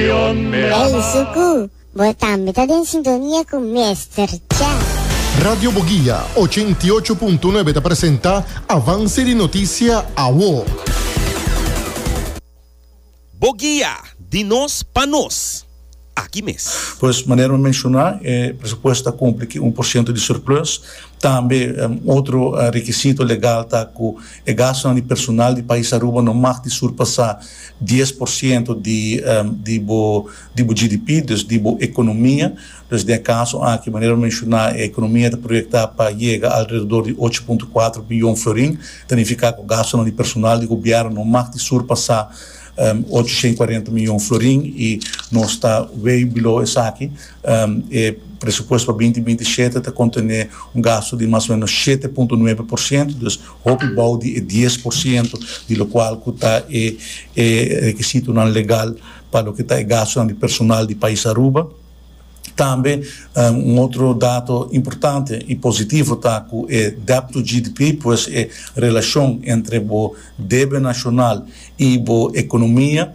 Penso cu bo tambe ta den sintonia cu Mester Chef. Radio Boguia ochenta i ocho punto nuebe ta presenta Avance di Noticia Awo. Boguia, di nos pa nos. Aki mes. Pues manera mi menciona e presupuesto ta cumpli cu un por ciento di surplus. Tambe otro requisito legal ta cu e gastonan di personal di pais Aruba no mag di surpasa dies por siento di di bo di bo GDP, dus di bo ekonomia. Dus den e kaso aki, manera bo menshoná, e ekonomia ta proyektá pa yega alrededor di ocho punto kuater biyon florin, ta nifiká ku gastunan di personal di gobièrnu no mag di surpasá ochocientos y cuarenta miyon florin i nos ta way below esaki. E presupuesto pa binti binti shete ta kontené un gastu di mas o ménos shete punto nuebe por siento, dus Hopi bou di e dies por siento di lokual ku ta e e rekisitonan legal pa loke ta e gastunan di personal di pais Aruba. Tambe un otro dato importante i positivo ta ku e debt to GDP, pues e relashon entre bo debe nashonal i bo ekonomia,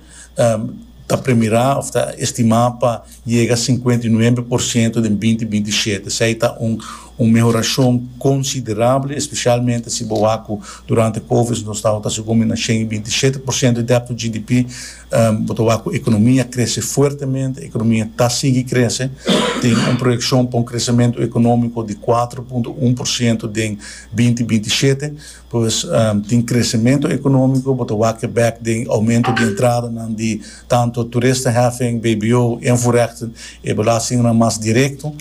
ta premirá òf ta estimá pa yega sinkuenta i nuebe por siento den binti binti i shete. Esei ta un un mehorashon konsiderable, espeshalmente si bo wak ku durante Covid nos tabata segun mi na shen i binti i shete por siento di dèpto GDP. Bo ta wak ku ekonomia krese fuertemente, ekonomia ta sigui krese. Tin un proyekshon pa un kresementu ekonómiko di kuater punto un por siento den binti binti i shete. Pues tin crecemento economico, bo ta wak bek den aumento di entradanan di tanto toeristenheffing, bbo, invoerrechten, e belastingnan mas directo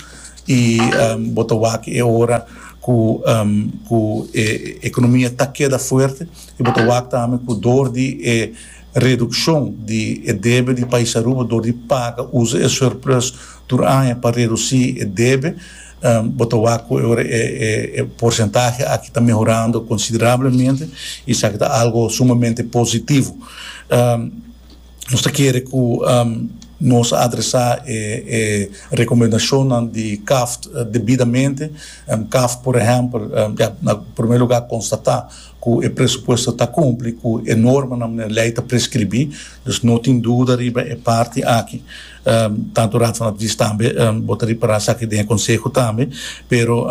y bo ta wak e ora cu cu e economia ta keda fuerte y bo ta wak tambe cu door di e reduccion di e debe di Pais Aruba door di paga usa e surplus tur aña pa reduci e debe, Bo ta wak ku ora e porsentahe aki ta mehorando konsiderablemente, i esaki ta algu sumamente positivo. Nos ta kere ku nos a adresá e rekomendashonnan di Kaft debidamente. Kaft, por ehèmpel, ya na promé lugá konstatá ku e presupuesto ta kumpli ku e normanan, manera lei ta preskribí, dus no tin duda riba e parti aki. Tantu Raad van Advies tambe bo ta ripara esaki den e konseho tambe, pero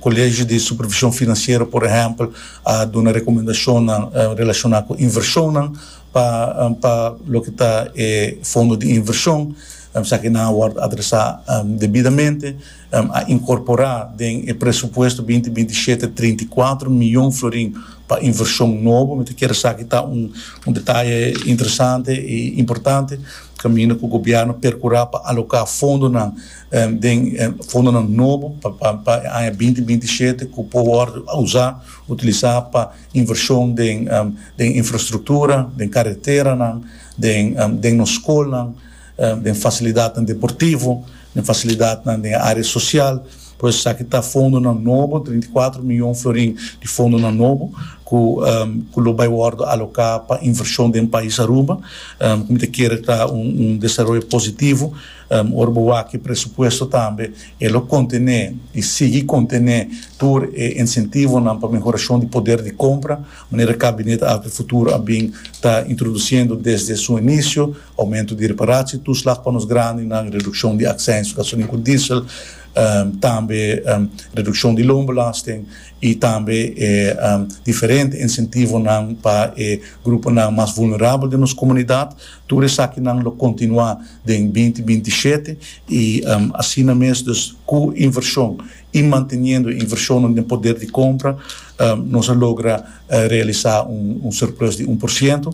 Kolegio di Supervishon Finansiero por ehèmpel a duna rekomendashonnan relashoná ku invershonnan pa pa loke ta e fondo di invershon esaki nan a wòrdu adresá debidamente. a inkorporá den e presupuesto binti binti shete trinta i kuater mion florin pa invershon nobo. Mi ta kere esaki ta un un detaye interesante i importante kaminda ku gobièrnu perkurá pa aloká fondonan den fondonan nobo pa pa pa e aña binti binti shete ku por wòrdu usá utilisá pa invershon den den infrastruktura, den kareteranan, den den nos skolnan. den fasilidatnan deportivo, den fasilidatnan den e área sosial, por esaki ta fondonan nobo, treinta i kuater mion florin di fondonan nobo ku ku lo bai wòrdu aloká pa invershon den pais Aruba, ku mi ta kere ta un un desaroyo positivo, ora bo wak e presupuesto tambe e lo kontené i sigui kontené tur e insentivonan pa mehorashon di poder di kompra, manera Kabinet Alter Futuro a bin ta introdusiendo desde su inisio. Aumento di reparaci, toeslag pa nos grandinan, reduccion di accijns pa gasolin cu diesel, tambe reduccion di loonbelasting y tambe e diferente incentivonan pa e gruponan mas vulnerabel den nos comunidad. Tur esakinan lo continua den binti binti i shete y asina mes dus cu inversion y manteniendo e inversionnan den poder di compra nos a logra realisa un surplus di un por ciento.